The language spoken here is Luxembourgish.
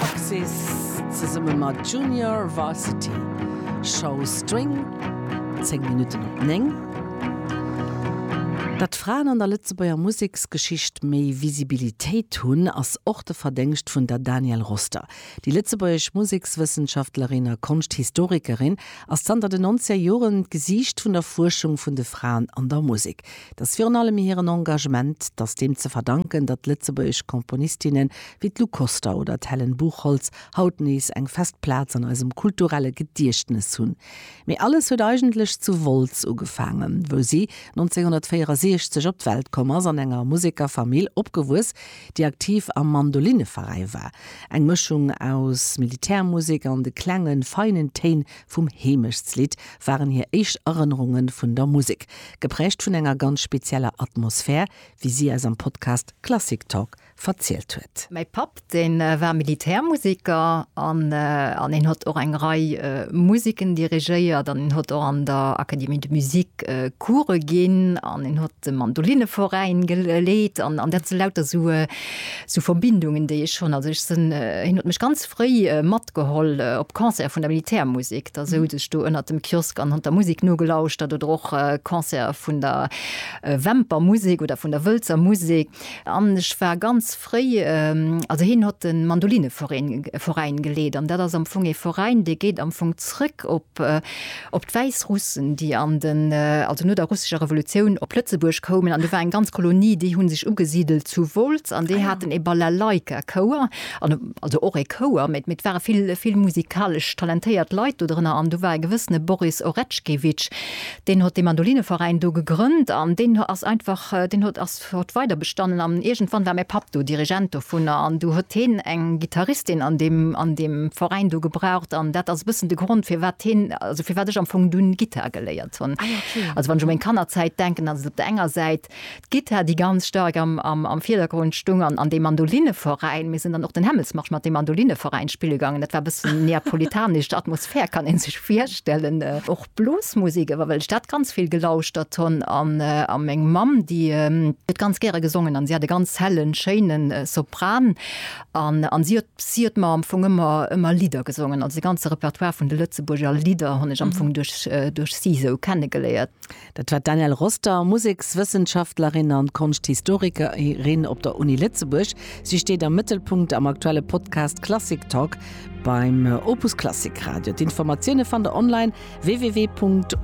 Axis zesumme mat Junior Varsity Show String, 10 Minutten op 9. Datt Fraen an der Lëtzebuerger Museksgeschicht méi Visibilitéit hunn, ass och de Verdéngscht vun der Danielle Roster. Déi lëtzebuergesch Musekswëssenschaftlerin a Konschthistorikerin ass zanter den Nonzeger Joren d'Gesiicht vun der Fuerschung vun de Fraen an der Musek. Et ass virun allem hiren Engagement, datt deem ze verdanken, datt lëtzebuergesch Komponistinnen wéi d'Lou Koster oder d'Helen Buchholtz, haut nees eng fest Plaz an eisem kulturelle Gediechtnes hunn. Mee alles huet eigentlech zu Wolz ugefaangen, wou si 1964 op d'Welt komm ass, an enger Musekerfamill opgewuess, déi aktiv am Mandolineveräi war. Eng Mëschung aus Militärmusek an de klenge feinen Téin vum Heemechtslidd waren hir éischt Erënnerunge vun der Musek, gepräägt vun enger ganz spezieller Atmosphär, wéi si eis am Podcast Classic Talk verzielt huet. Mäi Papp, dee war Militärmusiker an en huet och eng Rei Musiken dirigéiert an en huet och an der Académie de musique Coursë ginn an en huet de Mandolinneveräin geleet an dat si lauter esou Verbindungen, déi ech hunn. Also ech sinn, hien huet mech ganz fréi matgeholl op Concerte vun der Militärmusik. Da souz ech do ënnert dem Kiosk an hunn der Musik nogelauschtert oder och Concerte vun der Wämpermusik oder vun der Wëlzer Musik. An ech war ganz fréi, also hien hott den Mandoline-Veräin geleet, an dat ass am Fong ee Veräin, dee geet am Fong zrëck op op d'Wäissrussen, déi an den, also no der russescher Revolutioun op Lëtzebuerg koumen. An do war eng ganz Kolonie, déi hu sech ugesidelt zu Wolz, an déi haten ee Balalaika-Chouer, an also och ee Chouer, mä et ware vill, vill musikalesch talentéiert Leit do drënner. An do war e gewëssene Boris Oretschkewitsch, deen hott dee Mandoline-Veräin do gegrënnt, an deen ass einfach, deen hott, ass Huet weider bestannen an iergendwann war mäi Papp do Dirigent dovunner an du huet heen eng Gittaristin an deem an deem Veräin do gebraucht an dat ass e bëssen de Grond firwat heen also firwat ech am Fong dunn Gittar geléiert hunn. Also wann ech u meng Kannerzäit denken, dann ass et op der enger Säit d'Gittar déi ganz staark am am am Virdergrond stung an an deem Mandolinneveräin. Mir sinn dann och den Hämmelsmarsch mat deem Mandolinneveräin spille gaangen. Dat war e bëssen neapolitanesch Atmosphär, kann ee sech virstellen. Bluesmusik ewer well ech dat ganz vill gelauschtert honn an a meng Mamm déi huet ganz gäre gesongen an si hat e ganz hellen schéinen Sopran an an si huet si huet mer am Fong ëmmer ëmmer Lidder gesongen. Also de ganze Repertoire vun de Lëtzebuurger Lidder hunn ech am Fong duerch duerch si sou kenne geléiert. Dat war d'Danielle Roster, Musekswëssenschaftlerin an Konschthistorikerin op der Uni Lëtzebuerg. Si steet am Mëttelpunkt am aktuelle Podcast Klassik Talk Beim Opus Klassik Radio. D'Informatioune fannt der online www.opus.radio.